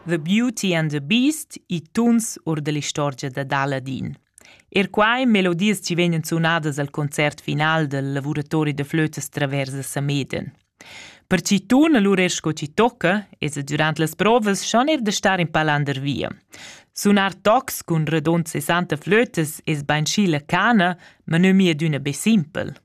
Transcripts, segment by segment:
The Beauty and the Beast, i tuns or dell'istorgia dad Aladin. Er quai melodias ci vegnan sunadas al concert final del lavuratori de flötes travers a Sameden. Per ci tun allura er sco ci tocca, es e durant las provas schon er de star in palander via. Sunar tocs cun redond 60 flötes es bainschi la cana, ma nö mia d'üna be simpel.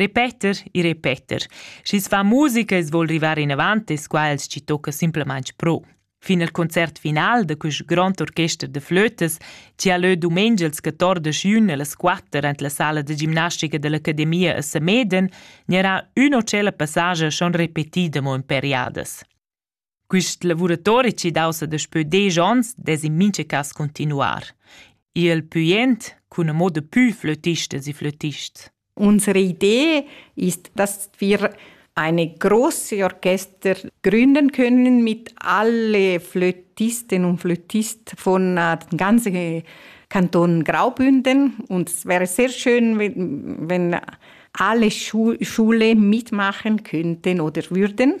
Repeter e repeter. Schi's fa musica e's voul rivar inavant es quai chi tocca simplamaing pro. Fin al concert final da quist grond orchester da flötas, chi ha lö dumengia ils 14 juni a las 4 ant la sala da gimnastica dell'Academia a Sameden, gnarà ün o tschella passage schon repetida mo in periadas. Quist lavuratori chi daussa daspö desch ons dess in mincha cas cuntinuar. Il pü jent cun ün moda pü flötistas e flötists. Unsere Idee ist, dass wir eine große Orchester gründen können mit alle Flötisten und Flötisten von äh, dem ganzen Kanton Graubünden. Und es wäre sehr schön, wenn, wenn alle Schule mitmachen könnten oder würden.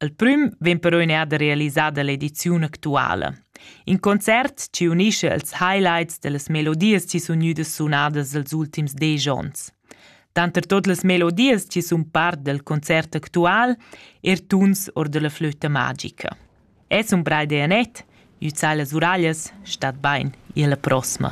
Il prüm vegn però neada realisada l'ediziun actuala. In concert chi unisce ils highlights dellas melodias chi sun gnüdas sunadas els ultims desch ons. Tanter tot las melodias chi sun part del concert actual er tuns or della flöta magica. Es un brai de Annette, üzai las uraglias, stat bain, e alla prossima.